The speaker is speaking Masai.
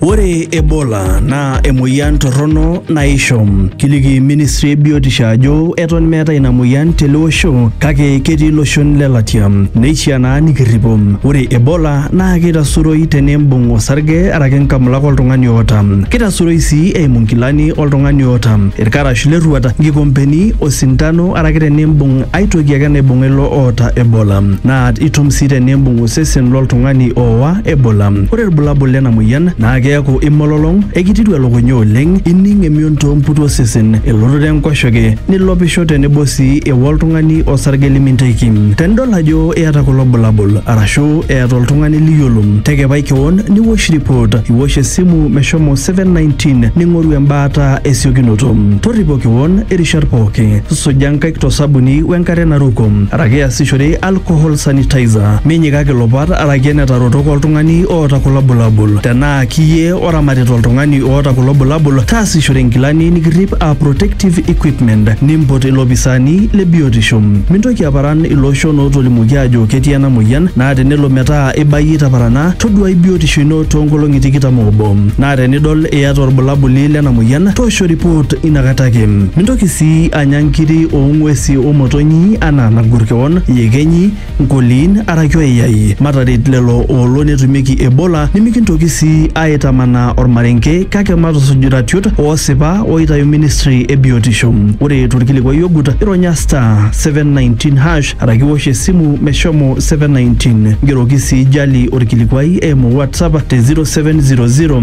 Ore Ebola naa emoyian torrono naisho. Kiliki ministry e biotisho ajo eton meeta ina moyian tele osho kake ketii iloshon le latia. Neishiaa naa nikirripo. Ore Ebola naa keitasuroi tenimbung osarge araki nkamulak oltung'ani oota. Keitasuroi sii eimu nkilani oltung'ani oota, ilkarash le rruat, nkikompeni, osindano araki tenimbung ae toki ake naibung'a ilo oota Ebola. Naa itum sii tenimbung osesen lo ltung'ani ooa Ebola. Ore ilbulabul lena moyian naa keaku imololong, ekititu elukunya oleng, ining emion too mputu osesen, elototo enkoshoke, nilopisho tenebo sii ewua oltung'ani osarge liminteiki. Tenidol ajo iyata kulo bulabul arashu eeta oltung'ani liyiolo, tekepai kewon niwosh ripot, iwosh esimu meshomo 719 ning'oru embaata esiokinoto. Torripo kewon irishat pooki, suja nkaik to sabuni wenkare naruko araki iasishore alcohol sanitizer minyikaki ilopat araki enetarotok oltung'ani oota kulo bulabul tenaa kiyie oramatita oltung'ani oota kulo bulabul taasishore inkilani nikirrip aa protective equipment nimpot ilopisaani le biotisho mintoki aparan ilooshon ootolimuoki aajo ketii ena moyian naa tenelo metaa ibayie itaparana toduai biotisho ino toonkolong'i tikitam oobo naa tenidol iyata orbulabuli lena moyian toosho report inakata ake mintoki sii anya nkiri oo ng'uesi o motonyi anaa nagur kewon, yekenyi, nkoliin araki oiyai. Mataret lelo oolo netumieki Ebola nimikintoki sii aaitamanaa olmarenke kake matusuj iratiot oosipa ooitayu ministri e biotisho. Ore tolkilikuai ogut, ironya *719# araki iwosh esimu meshomo 719. Ngeroki sii Jali olkilikuai eimu WhatsApp te 0700